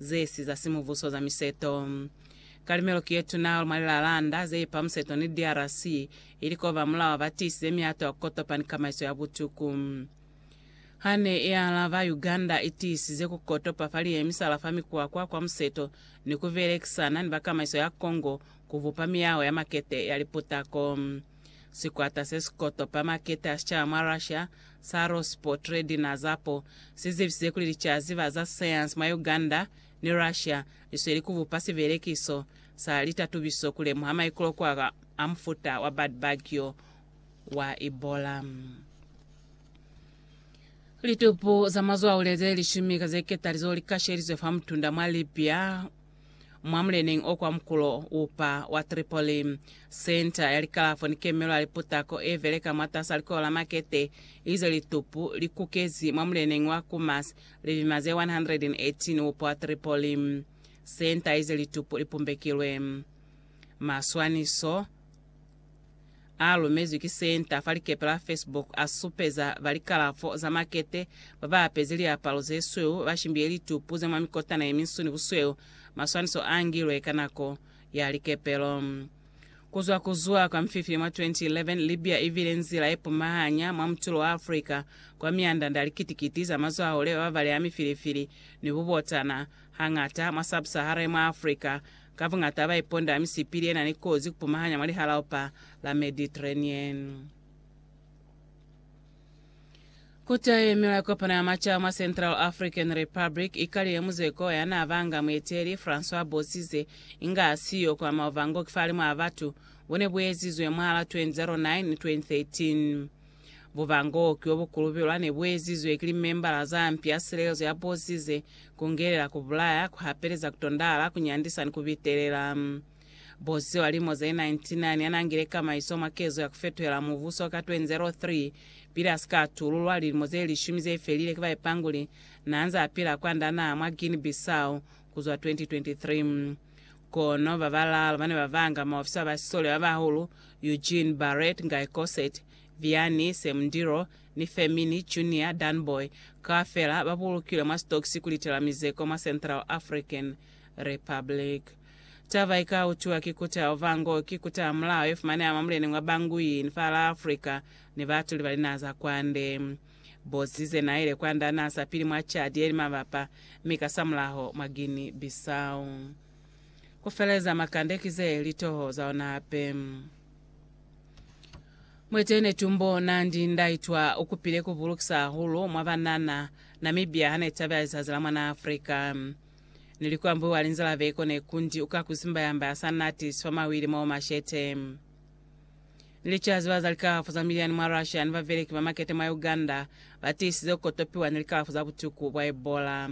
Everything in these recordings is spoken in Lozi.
zesi za simubuso za miseto. Kalimelo ki yetuna mwa lilalanda zeipa museto ni DRC, ili ko ba mulao ba tiisize miato ya ku kotopa ni kamaiso ya butuku. Hane i alaba, Uganda i tiisize ku kotopa fa liye misala fa mikwakwa kwa museto ni ku belekisana ni ba kamaiso ya Congo ku bupa miyaho ya makete ya liputako. Sikwata se si kotopa makete a sicaba mwa Russia sa Rospotredina Zapo si zibisize kuli licaziba za sayansi mwa Uganda ni Russia li sweli ku bupa sibelekiso sa litatubiso ku lemuha maikulokuwa a mufuta wa bad bug yo wa Ebola. Litupu za mazwaule ze lishumi ka ze ketalizo li kashelizwe fa mutunda mwa Libya. mwa muleneñi o kwa mukulo upa wa Tripoli. Senta ya likalafo ni kemelo ya liputako e beleka mwatas'a likolo la makete ize litupu li kukezi mwa muleneñi wa Kumas lilima ze 118 upa wa Tripoli. Senta ize litupu li pumbekilwe maswaniso. a lumezwi ki senta fa likepe la Facebook a supeza ba likalafo za makete ba ba apezi liapalo ze sweu ba shimbiye litupu ze mwa mikotana ye minsu ni busweu maswaniso a ngilwe ka nako ya likepelo. Ku zwa ku zuha kwa Mfifili mwa 2011, Libya i bile nzila ye pumahanya mwa mutulo wa Afrika kwa miandanda ya likiti-kiti za mazwahahule ba ba balea mifilifili ni bubotana Hañata mwa Sub-Saharan mwa Africa, ka buñata ba iponda misipili ye na ni kozi ku pumahanya mwa Lihalaopa la Mediterranean. Ku taeme lwa kopano ya macaba mwa Central African Republic, i kalile muzeko ya n'a banga mueteli François Bozizé, inga a siyo kwa maovangok fa limu a batu, bo ne bu ezizwe mwahal'a 2009 ni 2013. Bubango ki obu kulubelwa ne bu ezizwe ki limembala za mpi ya silelezo ya bosi ze kungelela ku bulaya, ku hapeleza, ku tondahala, ku nyandisa ni ku bitelela. Bosi wa lilimo ze 99 ya n'a ngile kamaiso mwa kezo ya ku fetuhela mubuso ka 2003, pili a si ka atululwa, lilimo ze lishumi ze felile ki baipanguli, n'a nze a pila kwand'a naha mwa Guinea-Bissau, ku zwa 2023. Kono ba balaalu ba ne ba vanga maofisa ba sisole ba bahulu, Eugene Barrett, Guy Cossett, Vianney Semundiro, ni Fermini Junior Danboy, kaufela ba bulukilwe mwa sitokisi ku litela mizeko mwa Central African Republic. Taba i ka utwiwa ki kuta Ovango ki kuta ya mulao ye fumaneha mwa muleneñi wa Bangui ni fa la Afrika ni baatuli ba linaha za kwande. Bozi ze n'a yile kwa nda n'a sa pili mwa cadi ye li mabapa, mi kasamulaho mwa Guinea Bissau. Ku feleza makande ki ze li toho za ona hape. Mueteñi Netumbo Nandi Ndaitwa u kupile ku bulukisa hahulu mwa banana Namibia ha ne tabela lizazi la mwan'a Afrika. Ni li ku ambuiwa linzala veko ne kundi u ka ku zimbayambaya sa nati sifamahwili mo mashete. Lichazi ba za likalafu za miliani mwa Russia ni babeleki ba makete mwa Uganda ba tiisize ku kotopiwa ni likalafu za butuku bwa Ebola.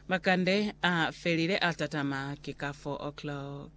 Makande a felile a tatama ki ka 4 o'clock.